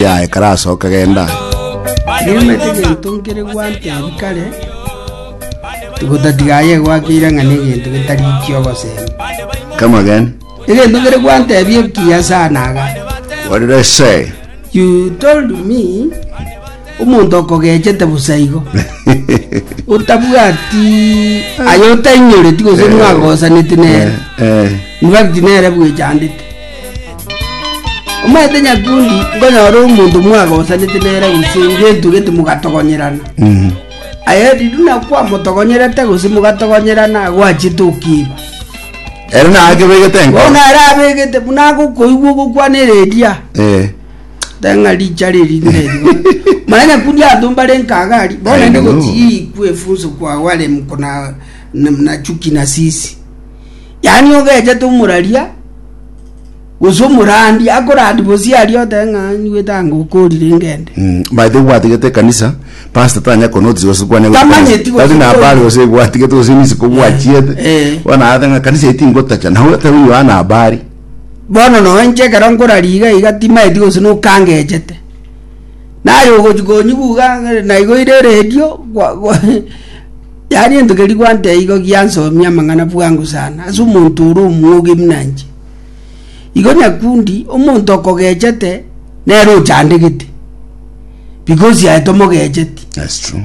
Yaye karasoka genda aye. Niomete egento nkere gwantebi kare, gotatiga aye gwakeire ng'a negento getari ki obosemi. Come again. Egento nkere gwantebi ekiya sana aga. What did I say? You told me omonto okogechete busa igo. Otabwati aye otainyoreti gose mwagosaneti nere. Eh, eh. In fact nere bwechandete. Omanyete nyakundi nkonyora omonto mwagosanete nere gose ngentugete mogatogonyerana Mm. aye riria buna kwamotogonyerete gose mogatogonyerana gwachiete okiigwa Ere nakebegete enkoro. bono ere abegete buna agokoigwa ogokwana ereria Eh. teng'a richa riri nerigo mara nyakundi abanto mbare nkaga aria bono Aye ende nigo. gotiga eikwa efunso kwao are mkona na- na chuki na sisi Yaani ogechete omoraria gose omorandi akorandi bosi aria otebe ng'a nigwete ango okorire ngende. Mm, by the way gwatigete ekanisa pastor tanya konotice gose kwane Tamanyeti gose tari nabari kwane. gose gwatigete gose nisiko gwachiete eh. bona ate ng'a kanisa eti ngotacha nawe otari yohana habari Bono nonye inche ekero nkoraria iga iga timaeti gose nokangechete. Naye ogochi konyigwa iga ng'a naigoire eredio gwa gwa Yaani entogeri gwante igo giansomia amang'ana bwango sana ase omonto ore omwoga buna inche. Igo nyakundi omonto okogechete nere ochandegete because aye tomogecheti. That's true.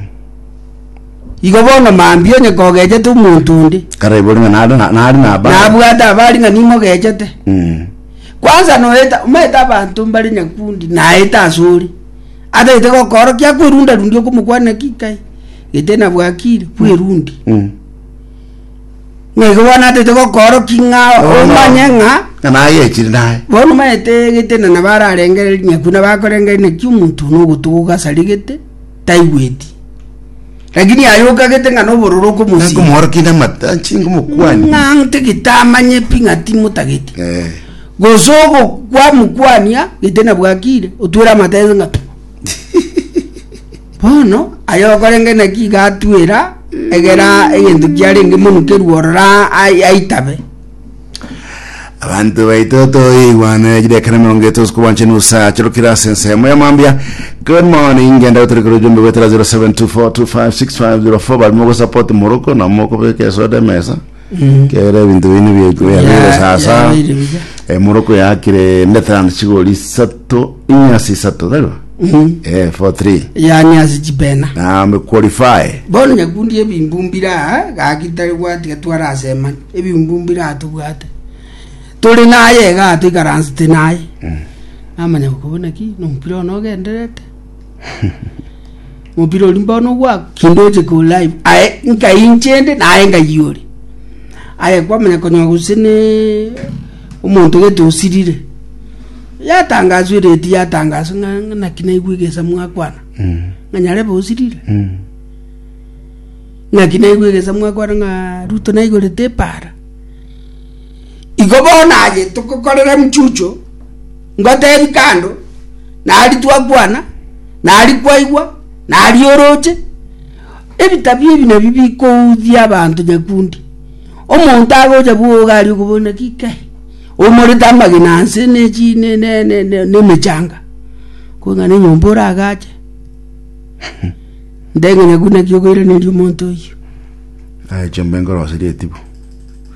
Igo bono mambia onye kogechete omonto onde Kare ibori ng'a nare na- nare nabare. nabwate abari ng'a nimogechete. Mm. Kwanza noeta omaete abanto mbare nyakundi naete ase ore. Ataete gokoorokia akwerundarundia okomokwana ki kai. gete nabwakire bwerundi Mm. ng'a igo bono atete gokooroki ng'a omanye ng'a Ng'a nagechire naye. bono maete gete na nabararengere rinyaku nabakorengere naki omonto na ogotuguka asare gete taigweti lakini aye okagete ng'a nobororo okomosima Nakomworokinde amata, chinga omokwani. ng'a ntagete amanye pi ng'a timotagete Eh. gose ogokwa mokwania gete nabwakire otwere amatense ng'a Bono, aye okorenge naki iga atuera, egera egento kiarenge monukerwe ororo ai- aitabe. Abanto baito toigwana ejire ekero emerongo eto usiku bwanche nusa chirukire ase ensemo ya mambia good morning ngenda gotore kore ujumbe gwetera 0724256504 barimo gosapoti moroko na mokobeka esoda emesa Kera ebinto bino bia- biabeire sasa yabeire buya. emoroko yakire ndeterano chigori isato inyasi isato taribo eh for three yani ase chibena na me qualify bono nyakundi ebimbumbi raa gagitari bwati gatwara asemani ebimbumbi raa tobwate tore naye igaa toikaransete naye namanya boka bono naki nomopira one ogendererete mobira ori mbono gwako kindoche ko live aye nkainchende naye ngayore aye kwamanya konywa gose ne omonto gete osirire yatangaswa ereti yatangaswa ng'a- ng'a naki naigwe egesa mwakwana Mm. ng'a nyarebe osirire Mm. naki naigwe egesa mwakwana ng'a ruto naigorete epara Igo bono aye togokorera emchuchu, ngotebi kando, nari twakwana, nari kwaigwa, nari oroche, ebitabia ebi nabio bikoudia abanto nyakundi. Omonto agocha bwa iga aria okobona ng'a kei, omorete amagena anse na echi ne ne ne ne ne emechanga, kogana na enyomba oragache, nde ng'a nyakundi naki okoiraneria omonto oyio. Naye chimbe nkoroserie etibu.